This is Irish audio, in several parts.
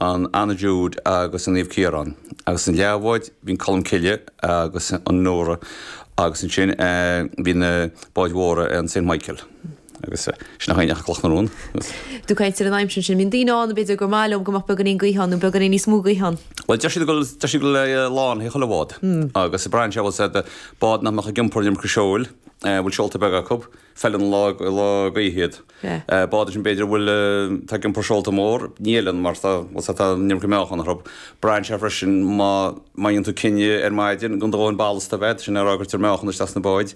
an Anna Jude agus an Naomh Ciarán, agus na leathbháid bhí an Colm Cille agus an Nóra agus ansin bhí na báid mhóra an Saint Michael agus sin an Chloch na Rón agus. Ag caint ar an aimsir ansin. Bíonn daoine ann a b'fhéidir gur mhaith leo go mbeadh beagáinín gaoth ann nó beagáinín níos mó gaoth ann. Bhuel deir siad go bhfuil deir siad go bhfuil a lá féin ag chuile bhád agus braitheann sé bhfuil a fhios agat bád nach mbeadh ag iompar an iomarca seoil bhfuil seolta beaga acu. feileann lá gaoithe iad. Bád ansin b'fhéidir a bhfuil atá ag iompar seolta mór ní fheileann mar tá bhfuil tá an iomarca meáchan orthu. Braitheann sé freisin má má dhéanann tú cinneadh ar maidin gan do dhóthain ballasta a bheith, sin an fáth a gcuirtear meáchan isteach sna báid.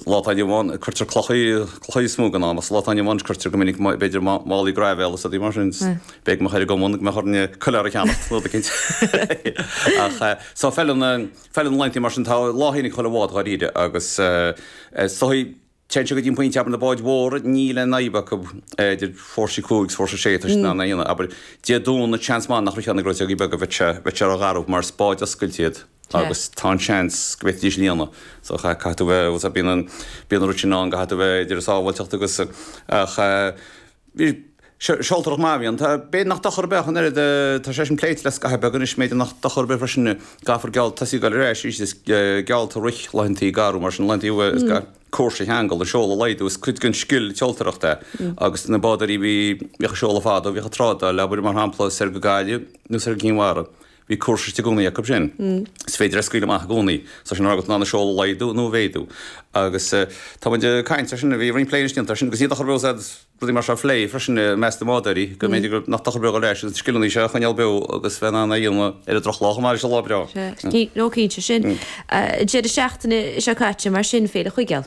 Lá atá inniu ann cuirtear clochaí clochaí is mó den am sa lá atá inniu ann is cuirtear go minic b'fhéidir málaí graibhéal is rudaí mar sin. Bheadh muid ag gabháil go mbeadh orainn coiléar a cheannacht no cinnte ach so feileann na. Feileann laethanta mar sin, tá a lá féin ag chuile bhád dháiríre agus is dóichí, téann siad go dtí an pointe, abair na báid mhóra, níl aon fhadhb acu idir fórsa a cúig is fórsa a sé, tá siad in ann é a dhéanamh, abair Dé Domhnaigh, seans maith nach rithfeadh na gleoiteogaí beaga, bheadh sé rógharbh mar is báid oscailte iad agus tá an seans go bhféadfaidís líonadh so caithfidh tú bheith, bhuel bíonn an rud sin ann, caithfidh tú bheith idir sábháilteacht agus ach. Bhí sé seoltóireacht maith a bhí ann. Tá b'fhéidir nach dochar ar bith ach an oiread. Tá sé sin pléite le scaitheamh beag anois, go mb'fhéidir nach dochar ar bith freisin go gcaithfear geall, tosaí ag gabháil ar ais arís is geallta a rith laethantaí garbha mar sin, laethantaí uair is gá cúrsa a cheangal, an seol a laghdú. Is cuid den scil seoltóireacht é agus na bádóirí bhí, bhíodh ag seoladh fadó, bhíodh ag trádáil, abair mar shampla soir go Gaillimh nó soir go Cinn Mhara. Bhí cúrsa istigh i gcónaí acu sin. Is féidir é a scaoileadh amach i gcónaí. Tá sin agat in ann an seol a laghdú nó a mhéadú. Agus tá muid ag caint ar sin, bhí roinnt plé anois déanta ar sin, agus ní dochar bhfuil a fhios agat rudaí mar seo a phlé freisin i measc na mbádóirí, go mb'fhéidir go, nach dochar ar bith a leithéid sin scileanna seo a choinneáil beo agus bheith in ann é a dhéanamh ar an drochlá chomh maith leis an lá breá. Sea. Ní, no, cinnte. Sin deireadh seachtaine seo caite mar sin, féile Chuigéal.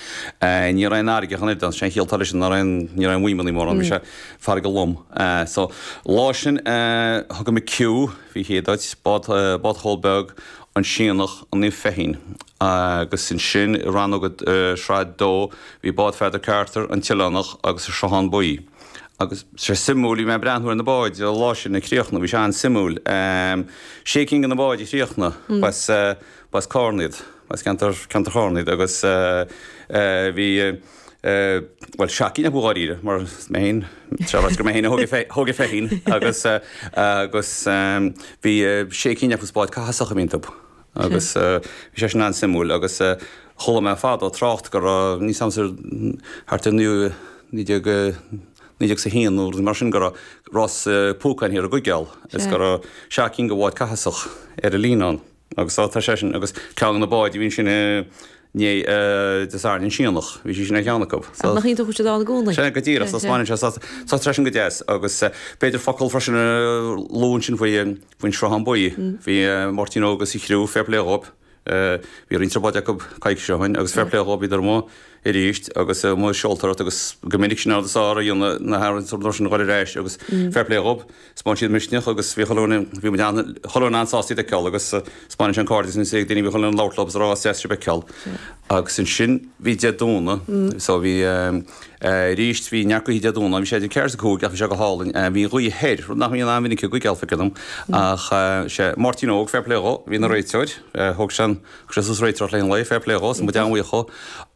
Ní raibh aon fharraige ann ar sin, shíltear leis, ní raibh aon mhaidhmeannaí mórán, bhí sé farraige lom. So lá sin thug mé Q, bhí sé ag bád Chóil Beag, an Sionnach, an Naomh Feichín. Agus ansin i rannóg Shraith 2 bhí bád Pheadar Carter, an tOileánach, agus an Sruthán Buí. Agus bhí sé suimiúil, bhí mé ag breathnú ar na báid an lá sin ag críochnú, bhí sé an-suimiúil. Sé cinn de na báid a chríochnaigh, B'as Carna iad, as ceantar Charna iad agus bhí, bhuel, seacht gcinn acu dháiríre mar an Feichín, tráth agus gurb é féin a thóg é féin agus, agus bhí sé cinn acu is báid Chathasach a bhí iontu agus bhí sé sin an-suimiúil agus chuala mé fadó trácht go raibh, níos aimsir, thart ar naoú, naoi déag, naoi déag is a haon nó rud mar sin go raibh rás púcáin thiar i gCuigéal is go raibh seacht gcinn de bháid Chathasach ar an líne ann. Agus tá, tá seisean agus ceann go na báid, bhí sin i ndiaidh Des Ardes an Síonach, bhí seisean ar cheann acu. So, Ach nach iontach go bhfuil siad ann i gcónaí. Sin é go díreach, so Sin, sin. smaoiníonn sé, so, so tá seisean go deas agus eh, b'fhéidir focal freisin a lua ansin faoi, eh, faoin Sruthán Buí. Bhí eh, Máirtín Óg sa chriú, fair play dhóib. Eh, bhí roinnt ar báid acu coicís ó shoin agus fair play dhóib iad amuigh arís agus eh, amuigh ag seoltóireacht agus go minic sin an rud is fearr a dhéanamh na haireann so nuair sin ghoil ar ais agus fair play dhóib. spáin siad misneach agus bhí chuile dhuine, bhí muid an, chuile dhuine an-sásta iad a fheiceáil agus spáineann sé an cairdeas anois ag daoine, bhí chuile dhuine labhairt leo agus rá deas sibh a fheiceáil. Agus ansin bhí Dé Domhnaigh, so bhí aríst, bhí neart gaoithe Dé Domhnaigh, bhí sé ag ceathair is a cúig ach bhí sé go hálainn, bhí gaoth thoir, rud nach mbíonn an-mhinic i gCuigéal ag an am ach sé, Máirtín Óg, fair play dhó, bhí ina réiteoir, thóg sé an, Chrysos réiteoireacht le haghaidh an lae, fair play dhó, so tá muid an-bhuíoch dhó.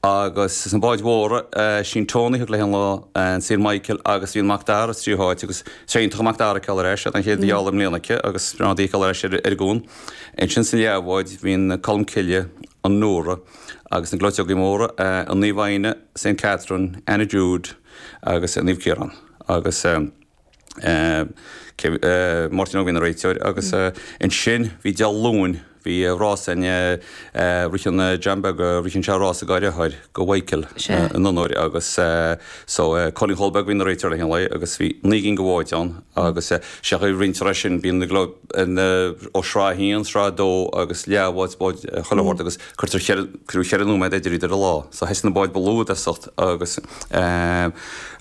Agus sna báid mhóra, sí an Tonaí a thug léi an lá, an Saor Michael agus bhí an Mac Dara sa tríú háit agus is é iontach an Mac Dara a fheiceáil ar ais, an chéad gheall i mbliana aici agus breá an rud í a fheiceáil ar ais ar an gcuan. Ansin sa leathbhád bhí an Colm Cille, an Nora agus na gleoiteogaí móra, an Naomh Áine, Saint Catherine, Anna Jude agus an Naomh Ciarán agus. Máirtín Óg a bhí ina réiteoir, agus ansin bhí Dé Luain, bhí rás a ritheann John Beag, ritheann sé rás dhá dheartháir go Mhichael in onóir agus so Cóilín Chóil Beag, bhí ina réiteoir le haghaidh an lae agus bhí naoi gcinn go bháid ann agus sé an chaoi a roinntear sin bíonn na gleoiteogaí, Sraith a haon, Sraith a dó agus leath bháid, báid chuile shórt agus cuirtear ceithre, crú ceithre nóiméad idir iad ar an lá so thosaigh na báid ba lú i dtosach. agus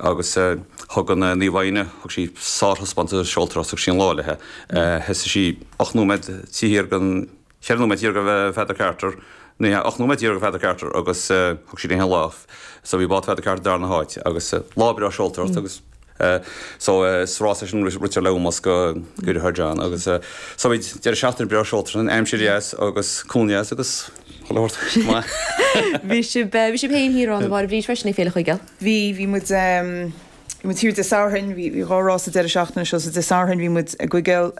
agus thug an Naomh Áine, thug sí sárthaispeántas seoltóireacht agus thug sí an lá léi. Thosaigh sí ocht nóiméad thiar den, cheithre nóiméad thiar de Pheadar Carter, ní hea, ocht nóiméad thiar de Pheadar Carter agus thug sí léi an lá. So bhí bád Pheadar Carter darna háit agus lá breá seoltóireacht agus. so is rás é sin a ritear le hómós go dheartháir John agus so bhí deireadh seachtaine breá seoltóireacht ann, aimsir dheas agus cóir dheas agus chuile shórt maith. Bhí sibh bhí sibh féin thiar ann a Mháire Bríd freisin ag Féile Chuigéil? Bhí, bhí muid bhí muid thiar Dé Sathairn, bhí dhá rás sa deireadh seachtaine seo, so Dé Sathairn bhí muid i gCuigéal.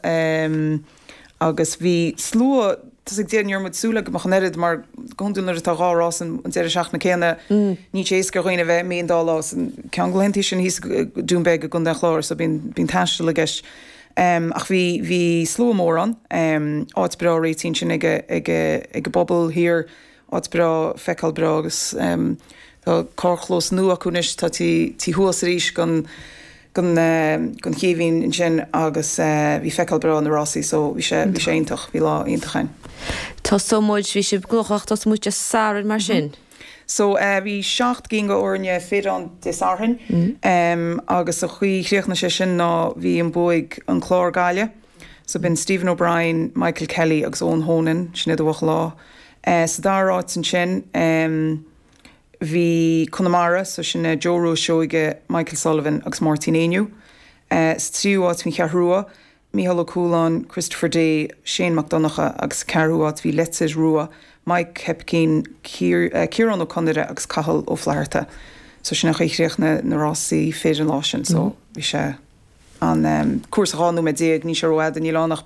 agus bhí slua, tá a fhios agat, ní raibh muid súil le go mbeadh an oiread mar go hiondúil nuair atá dhá rás an deireadh seachtaine céanna níl sé éasca ar dhaoine bheith ann an dá lá san ceann laethanta sin thíos Doonbeg i gContae an Chláir so bíonn bíonn taisteal i gceist um ach bhí bhí slua mór ann um áit breá réitithe ansin ag ag ag an bpobal thiar Áit breá, feiceáil breá agus tá carrchlós nua acu anois, taobh thuas arís gon chéibhín ansin agus bhí feiceáil breá ar na rásaí so bhí sé iontach, bhí lá iontach ann. Tosóidh muid, bhí sibh gnóthach, tosóidh muid Dé Sathairn mar sin? So bhí seacht gcinn go fhoirne fir ann Dé Sathairn agus an chaoi a chríochnaigh sé sin ná bhí an bua ag an Clár-Gaillimh. So b'in Stephen O'Brien, Michael Kelly agus Eoin Honan, sin iad a bhuaigh an lá. Sa dara áit ansin bhí Conamara, so sin é Joe Rua Seoige, Michael Sullivan agus Máirtín Éinniú. Sa tríú áit bhí an Cheathrú Rua, Micheál Ó Cualáin, Christopher Day, Shane Mac Donnacha agus sa ceathrú áit bhí Leitir Rua, Maidhc Hoipicín, Ciarán Ó Conaire agus Cathal Ó Flatharta. So sin é chríochnaigh na rásaí fir an lá sin so bhí sé. an cúrsa 12 nóiméad, níl sé ró-fhada, níl ann ach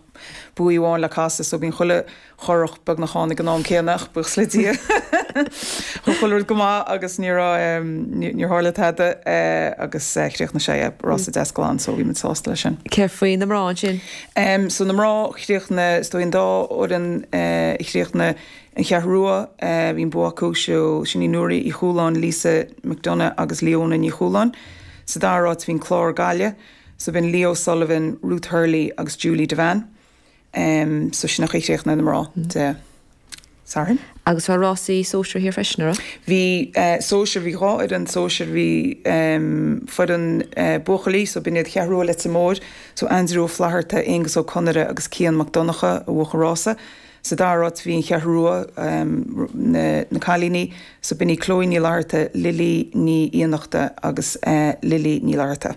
baoi amháin le casadh so bíonn chuile churach beagnach ann ag an am céanna ach buíochas le Dia ghabh chuile rud go maith agus ní raibh, níor tharla tada agus chríochnaigh sé an rása deas glan so bhí muid sásta le sin. Céard faoi na mná ansin? Em so na mná, chríochnaigh, is dóigh an dá fhoireann a chríochnaigh, An Cheathrú Rua, bhí an bua acu, so, sin í Nuaraí Uí Chualáin, Lisa McDonagh agus Leona Ní Chualáin. Sa dara áit bhí an Clár, Gaillimh, so b'in Lee O'Sullivan, Ruth Hurley agus Julie Devan. Em, so sin é an chaoi a chríochnaigh na mná Dé Sathairn. Agus bhí rásaí sóisir thiar freisin, an raibh? Bhí eh, sóisir, bhí dhá fhoireann sóisir, bhí em, foireann eh, buachaillí, so b'in iad Cheathrú Rua Leitir Móir, so Aindriú Ó Flatharta, Aonghus Ó Conaire agus Cian Mac Donncha a bhuaigh an rása. Sa dara áit bhí an Cheathrú Rua, na cailíní, so b'in í Chloe Ní Fhlatharta, Lily Ní Fhiannachta agus Lily Ní Fhlatharta.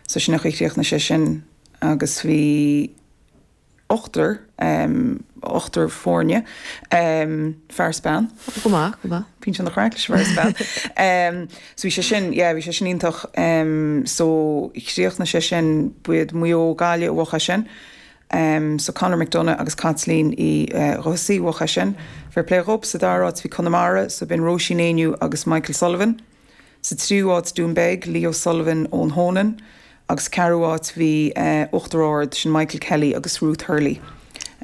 So sin é an chaoi a chríochnaigh sé sin agus bhí ochtar, ochtar foirne, fear is bean. Go maith, go maith. Bíonn sé an-chraic leis an bhfear is bean. So bhí sé sin, yeah, bhí sé sin iontach. So chríochnaigh sé sin b'iad Maigh Eo, Gaillimh, a bhuaigh é sin. so Conor McDonagh agus Caitlín Uí Dhufasaigh a bhuaigh é sin. Fair plé dhóibh. Sa dara áit bhí Conamara, so b'in Róisín Éinniú agus Michael Sullivan. Sa tríú áit Doonbeg, Lee O'Sullivan, Eoin Honan. Agus sa ceathrú áit bhí Uachtar Ard, sin Michael Kelly agus Ruth Hurley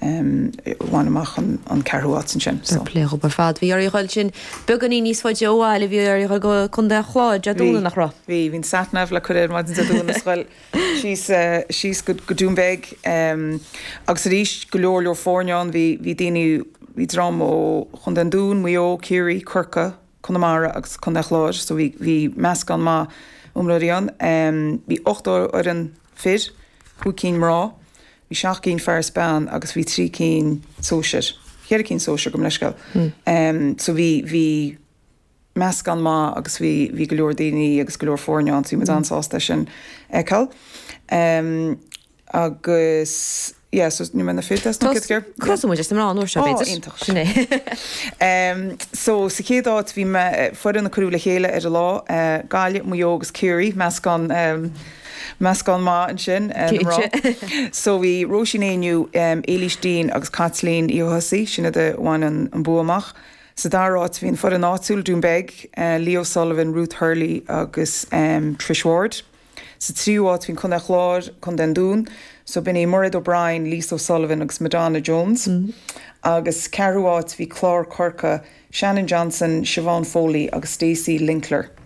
a bhain amach an ceathrú áit ansin. Fair plé dhóibh ar fad. Bhí oraibh a ghabháil ansin beagáinín níos faide ó bhaile, bhí oraibh a ghabháil go Contae an Chláir, Dé Domhnaigh nach raibh? Bhí, bhí an sat nav le cur air maidin Dé Domhnaigh is a ghabháil. síos, síos go Dún Bheag agus arís go leor leor foirne ann. Bhí, bhí daoine, bhí dream ó Chontae an Dúin, Maigh Eo, Ciarraí, Corcaigh, Conamara agus Contae an Chláir so bhí, bhí meascán maith iomróirí ann. Bhí ocht fhoireann fir, cúig cinn mná, bhí seacht gcinn fear is bean agus bhí trí cinn sóisir, cheithre cinn sóisir, gabh mo leithscéal. So bhí, bhí. meascán maith agus bhí bhí go leor daoine agus go leor foirne ann so bhí muid an-sásta é sin a fheiceáil. Agus yeah so ní mé na fid as na cid gur. Crosaigh muid leis na mná an uair seo b'fhéidir. Ó iontach. Sin é. So sa chéad áit bhí foireann a cuireadh le chéile ar an lá, Gaillimh, Maigh Eo agus Ciarraí, meascán meascán maith ansin na mná. Cinnte. So bhí Róisín Ní Éinniú, Éilís Deane agus Caitlín Uí Thosaigh, sin iad a bhain an bua amach. Sa dara áit bhí an foireann áitiúil, Dún Beidh, Lee O'Sullivan, Ruth Hurley agus Trish Ward. Sa tríú áit bhí an Contae Chláir, Co. an Dúin, so b'in í Mairéad O'Brien, Lisa O'Sullivan agus Madonna Jones. Agus sa ceathrú áit bhí Clár Corca, Shannon Johnson, Siobhán Foley agus Stacey Linkler.